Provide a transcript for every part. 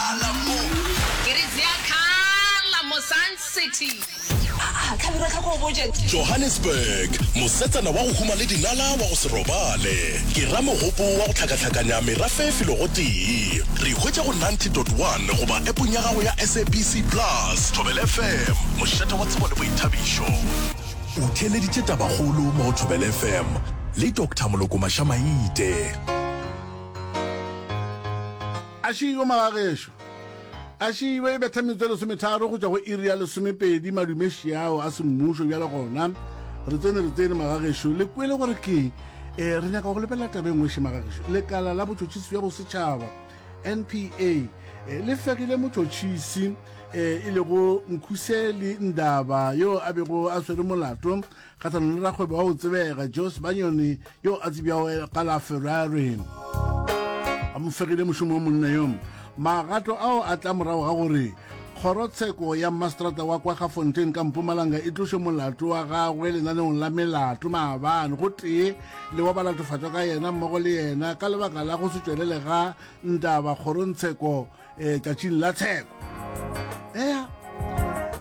Ke re tseya khala mo Sun City. Aa, Khabira tlhoko o botše. Johannesburg, mosetsana wa go huma le dinala wa go se robale, ke ramogopo wa go hlakahlakanya merafe e filego tee. Re hwetše go ninety dot one goba appong ya gago ya SABC Plus, Thobela FM, mošate wa tsebo le boithabišo. O theeleditše Tabakgolo mo go Thobela FM le Doctor Moloko Mashamaite. Ašii yo magagešo. Ašii be e betha metsotso e lesometharo go tšwa go iri ya lesomepedi madumeši ao a semmušo bjale gona. Re tsene, re tsene magagešo. Le kwele gore keng? Ee, re nyaka go lebelela taba e nngweše magagešo. Lekala la Botšhotšhisi bja Bosetšhaba, NPA, eh, le fegile motšhotšhisi eh, e lego Nkhuseli Ndaba yo a bego a swere molato Kgahlano le rakgwebo wa go tsebega Joe Sebanyoni yo a tsebjago ka la Ferrari a mo fegile mošomo wa monna yo. Magato ao a tla morago ga gore kgorotsheko ya mastrata wa kwa gafontein ka mpumalanga e tloše molato wa gagwe lenaneong la melato maabane go tee le wa balatofatšwa ka yena mmogo le yena ka lebaka la go se tšwelele ga ntaba kgorontsheko eh, tšatšing la tsheko ea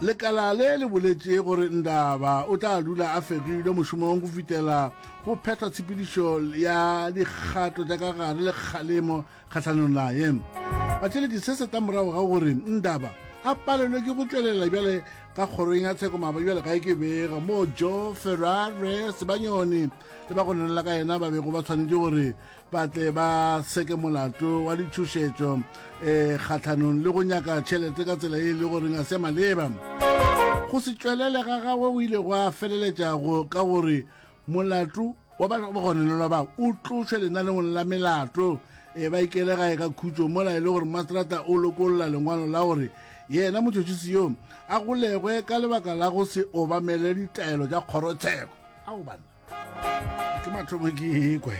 lekala le le boletše gore ndaba o tla dula a fegilwe mošomong go fitela go phethwa tshepedišo ya dikgato tša ka gare le kgalemo kgatlhanong naye batšheledi se se ka morago ga gore ndaba a palelwe ke go tšwelela bjale ka kgorong ya tsheko maaba bjale ga e ke bega moo jo ferrare sebanyone le ba go nenela ka yena ba bego ba tshwanetse gore ba tle ba seke molato wa ditšhošetšo um eh, kgatlhanong le go nyaka tšhelete ka tsela e e le goreng a se maleba go se tšwelele ga gagwe go ile go a feleletša ka gore molato wa bagonelelwa ba o tlošwe lenaneng la melato e ba ikele gae ka khutso mola e le gore mastrata o lokolola lengwalo la gore yena motšotšisi yo a golegwe ka lebaka la go se obamele ditaelo tša kgorotsheko ao banna ke mathomo ke ekwe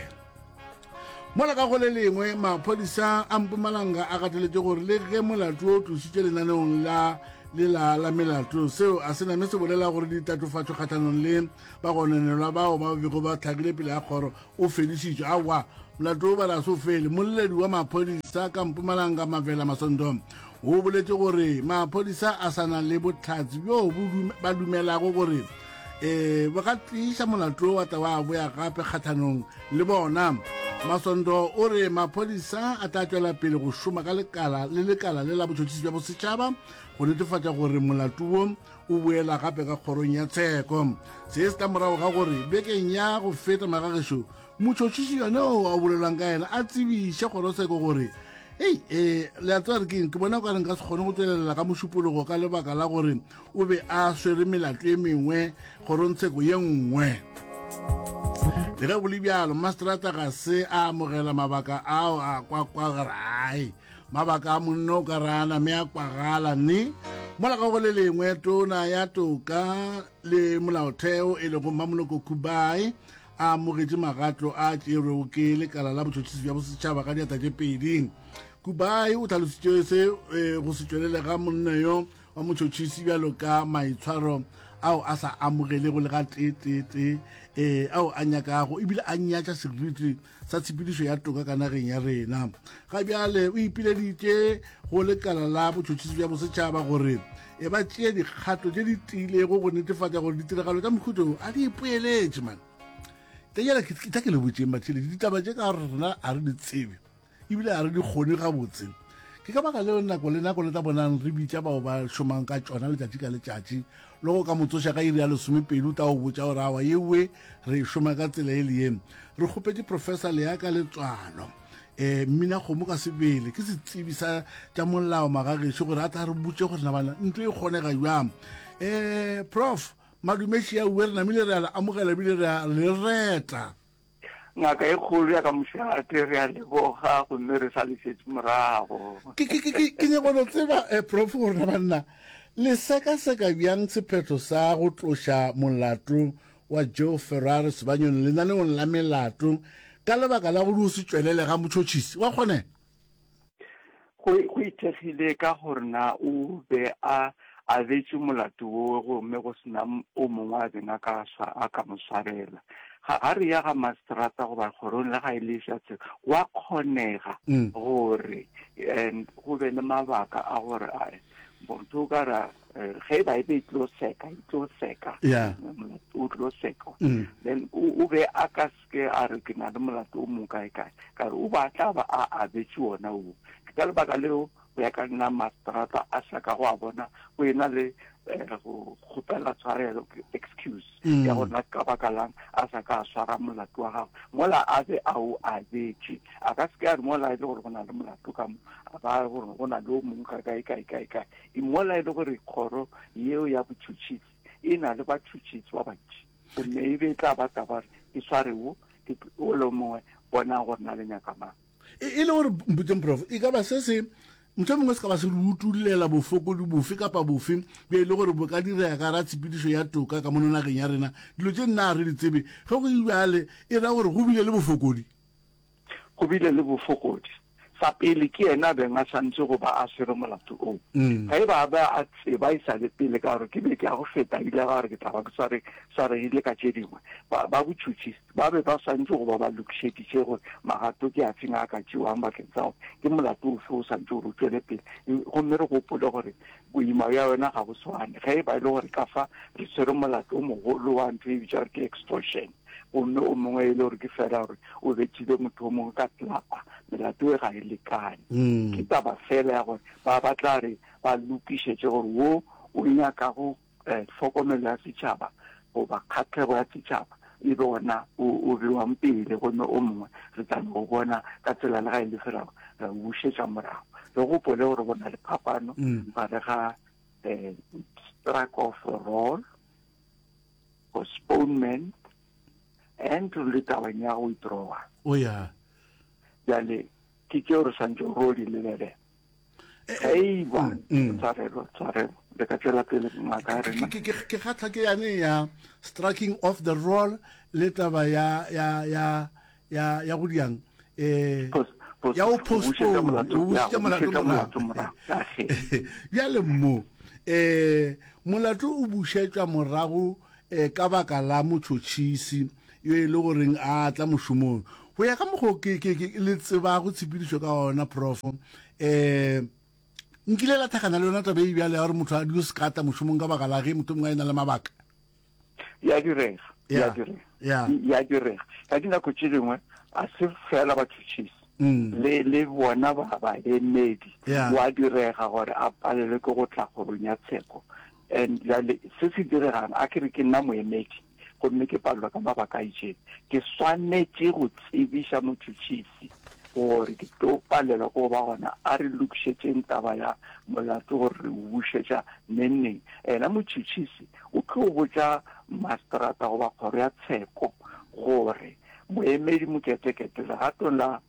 mola ka go le lengwe maphodisa a mpumalanga a gateletse gore le ge molato o tlositše lenaneong la lela la melato seo a se name se bolela gore ditatofatso kgatlhanong le bagonanelwa bao ba bego ba tlhakile pele ya kgoro o fedišitšwe awa molato o balase o fele molledi wa maphodisa ka mpumalanga mavela masondo O boletše gore maphodisa a sa na le botlhatsi bjoo ba dumelago gore um bo ka tliša molato wa tla wa boya gape kgathanong le bona masondo o re maphodisa a tla tšwela pele go šoma ka lekala le lekala le la botšhotšhisi bja bosetšhaba go netefatša gore molato wo o boela gape ka kgorong ya tsheko se se tla morago ga gore bekeng ya go feta magagešo motšhotšhiši yone o a bolelwang ka yena a tsebiše kgoroseko gore ei e le a tsebare keng ke bona o ka reng ka se kgone go tswelelela ka mošupologo ka lebaka la gore o be a swere melato e mengwe kgorontsheko ye nngwe le ge go le bjalo mastrata ga se a amogela mabaka ao a kwakwagarai mabaka a monno o ka rana mme a kwagala ne mola ka go le lengwe tona ya toka le molaotheo e lego mmamoloko kubai a amogetše magatlo a tšerwego ke lekala la botšhotšhisi bja bosetšhaba ka diata tše pedi kubai o tlhalositše se e, go se tšwelele ga monno yo wa motšhotšhisi bjalo ka maitshwaro ao a sa amogelego le ga teeteete e, ao a nyakago ebile a nyatša seriti sa tshepedišo ya toka ka nageng ya rena ga bjale o ipileditše go lekala la botšhotšhisi bja bosetšhaba gore e ba tšea dikgato tše di tiilego go netefatša gore ditiragalo tša mohuto wo a di ipoeletše mane kenyela ke tla ke le botseng batšheledi ditaba tše ka gore rena a re di tsebe ebile a re di kgone gabotse ke ka baka leo nako le nako le tla bonang re bitša bao ba šomang ka tšona letšatši ka letšatši le go ka motsoša ka iri ya lesomepedi o tla go botša gore awa yewe re e šoma ka tsela e le yeng re kgopetše professor leaka letswalo um mmina kgomo ka sebele ke setsebi sa tša molao magagešo gore a tla re botse gore nabana ntlo e kgonega jwang um prof madumeši ya uwe re namile re a le amogela ebile re a le reta ngaka e kgolo ya ka mošate re a leboga gomme re sa lesetse morago ke nyako no tseba um eh, prof gorena banna le sekaseka bjang sephetho sa go tloša molato wa Joe Ferrari Sebanyoni lenaneong la melato ka lebaka la go di o se tšwelele ga motšhotšhisi wa kgonega. Go go ithekgile ka gore na o be a abetše molato wowe gomme go sena o mongwe a beng a ka swa a ka mo swarela. Ga a re ya ga masterata goba kgorong le ga e le fšatse gwa kgonega gore go be le mabaka a gore a motho o ka ra eh, ge ba ebe e tlo seka e tlo seka o tlo seka mm. then o be a ka seke a re ke na le molato o mong kae kae ka re o ba tla ba a abetse ona o ke ka lebaka leo go ya ka nna mastrata a sa ka go a bona o ena le eh, go kgopela tshwarelo excuse mm. ya gore na ka baka lang a sa ka swara molato wa gago mola a be a o abetše a ka se ke a re mola e le gore go na le molato ka mo a ba gore go na le o mongwe ka kae kae kae kae e mola e le gore kgoro yeo ya botšhotšhisi e na le batšhotšhisi ba bantši gomme e be e tla ba taba gore ke sware wo ke ole mongwe bona gore na le nyakamang E, e le gore mputseng prof e ka ba se se ntho mongwe se ka ba se re utullela bofokodi bofe kapa bofe be e le gore bo ka direga ka ra tshepedišo ya toka ka mono nageng ya rena dilo tše nna a re di tsebe ge go ibjale e ra gore go bile le bofokodi go bile le bofokodi sa pele ke yena a beng a santse go ba a swere molato oo mm. ga e ba ba a tseba e sa le pele ka gore ke be ke ya go feta ile ga gore ke tla ba ke swaregile ka tše dingwe ba botšhutšhi Ba be ba swanetše go ba ba lokišeditše gore magato ke a feng a ka tšewang bakeng sa gore ke molato ofe o swanetše gore o tšwele pele. Gomme re gopole gore boima bja yona ga bo swane. Ge e ba e le gore ka fa re tshwere molato o mogolo wa ntho e bitšwa gore ke extortion, gomme o mongwe e le gore ke fela gore o bethile motho o mongwe ka tlapa, melato e ga e lekane. Ke taba fela ya gore ba ba tla re ba lokišetše gore wo o nyakago eh, tlhokomelo ya setšhaba goba kgatlhego ya setšhaba e be ona o bewang pele gomme o mongwe re tla no bona ka tsela le ga e le felago re bušetša morago re gopole gore go na le phapano mm. gare ga um struck of roll postponement and re le tabang ya go withdrawa o oh, ya jale ke tseo re santse ro di lebele eiwa tshwarelo tshwarelo le ka tswela pele ngaka ya rena ke kgatlha ke yane ya striking off the roll le taba ya ya ya ya ya go diang eh ya o postpone o busitse molato morago bjale mmo eh molato o bušetšwa morago eh ka baka la motšhotšhisi yo e le goreng a tla mošomong. Go ya ka mokgwa o ke, ke, ke le tsebago tshepedišo ka ona, Profo, um nkile la thakgana le yona taba e bjale ya gore motho a dio sekata mošomong ka baka la ge motho mongwe a e na le mabaka. Ya direga, ya direga, ya direga. Ka dinako tše dingwe a se fela batšhotšhisi Mm. le le bona ba ba emedi yeah. wa direga gore a palelwe ke go tla kgorong ya tsheko and jale se se diregang a ke re ke nna moemedi gomme ke palelwa ka mabaka a itšeng ke swanetše go tsebiša motšhotšhisi gore ke tlo palelwa go ba gona a re lokišetšeng taba ya molato gore re o bušetša nengneng ena motšhotšhisi o tlo botša masterata goba kgoro ya tsheko gore moemedi moketekete legatong la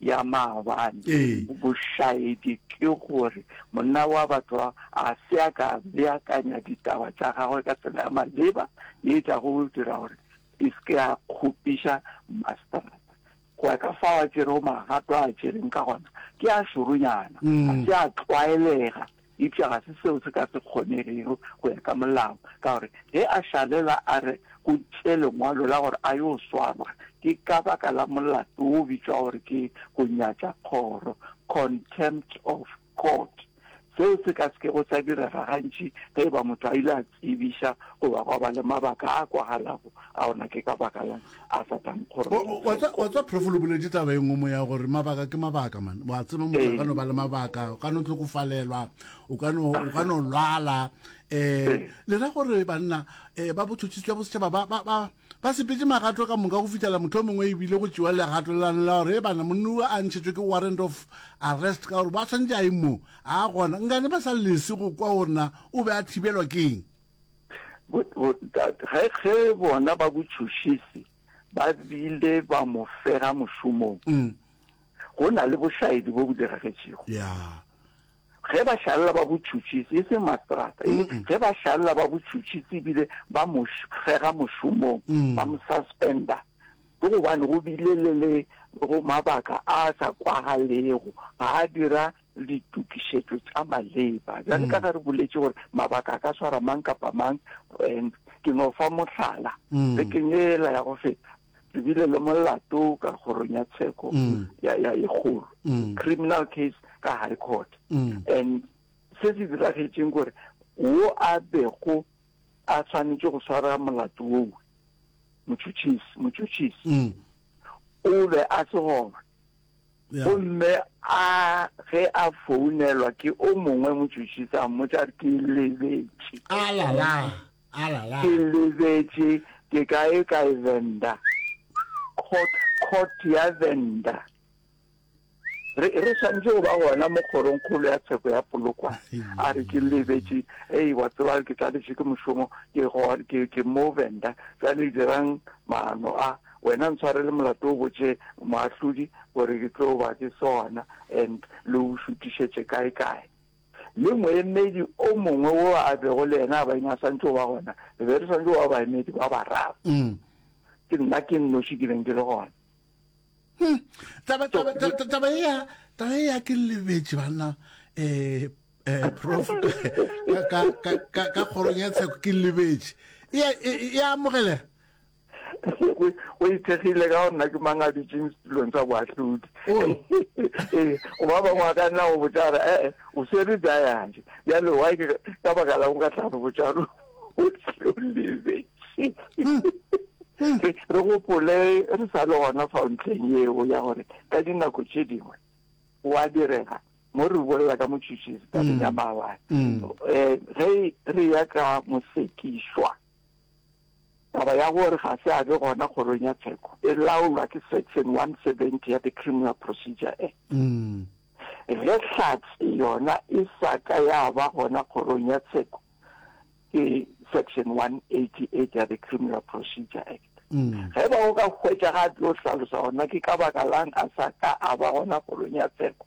ya maabane. Bošaedi ke gore monna wa batho a se a ka beakanya ditaba tša gagwe ka tsela ya maleba ye e tlago go dira gore e se ke ya kgopiša maseterata. Go ya ka fao a tšerego magato a a tšereng ka gona, ke a šoronyana, ga se a tlwaelega. Eupša ga se seo se ka se kgonegego go ya ka molao, ka gore ge a šalela a re go tše lengwalo la gore a yo swarwa, ke ka baka la molato wo o bitšwa gore ke go nyatša kgoro, contempt of court. Seo se ka se kego sa direga gantši ge e ba motho a ile a tsebiša goba gwa ba le mabaka a kwagalago a ona ke ka baka lang a sa tla nkgoroeletsa wa tsa profolo boledi taba e nngwe mo ya gore mabaka ke mabaka mane wa tseba motho a ka no ba le mabaka o ka no tlokofalelwa o ka no lwala um le ra gore banna um ba botšhotšhisi jwa bosetšhaba ba Ba sepetše magato ka moka go fihlela mohlomongwe e bile go tšewa legato le lane la gore eebana monna wo a ntšhetšwe ke warrant of arrest ka gore ba swanetše a ye moo. A gona, nkane ba sa lese go kwa gore na o be a thibelwa ke eng. Ge, ge bona ba botšhošisi ba bile ba mo fega mošomong, go na le bošaedi bo bo diragetšego. Ya. ge ba šalela ba botšhutšhisi, e seng mastrata, e le ge ba šalela ba botšhutšhisi ebile ba mo fega mošomong, mm. ba mo suspenda, ke gobane go bile le le go mabaka a sa kwagalego ga a dira ditokišetšo tša maleba jale ka mm. ge re boletše gore mabaka a ka swara mang kapa mang and ke no fa mohlala mm. le kenyela ya go feta re bile le molato ka kgorong ya tsheko mm. ya ya e kgolo mm. criminal case ka high court mm. and se se diragetseng gore wo a bego a tshwanetse go swara molato oo motšhutšhisi motšhutšhisi o be a se gona gomme a ge a founelwa ke o mongwe motšhutšhisi a mmotsa ke lebetse alala Ke lebetše ke kae kae Venda court court ya Venda re re swantse go ba gona mo kgorong kgolo ya tsheko ya polokwa a re ke lebetše ei wa tseba ke tladitše ke mošomo ke go ke ke mo Venda tsa le dirang maano a wena ntshware le molato o botše moahlodi gore ke tlo ba ke sona and le o šutišetše kae kae le moemedi o mongwe wo a bego le yena a baeng a santse o ba gona, re be re santse o ba baemedi ba bararo. Mm. Ke nna ke nnoši ke beng ke le gona. Hmm. Taba, taba, taba, taba ea, taba ea ke lebetše banna, eh, eh, prof, ka, ka, ka, ka kgorong ya tsheko ke lebetše. Ea, ea amogelega. go ithekgile ka gore nna ke mang a dutšeng setulong sa boahlodi ee go ba bangwe a ka nna go botsa gore ee eh, o swere jayanje bjale wa ke ka baka la go ka tlhano botsalo o tlolebe hmm. Hmm. re gopole re sa le gona fa ntlheng eo ya gore ka dinako tše dingwe wa direga mo re bolela ka motšhitšhisi ka ya hmm. maabane um ge re ya ka mosekišwa Taba ya gore ga se a be gona kgorong ya tsheko e laolwa ke Section 170 ya the Criminal Procedure Act. Ge hlatse yona e sa ka ya ba gona kgorong ya tsheko ke Section 188 ya the Criminal Procedure Act. Ge e ba go ka hwetšaga a tlo hlalosa gore na ke ka baka la'ng a sa ka a ba gona kgorong ya tsheko,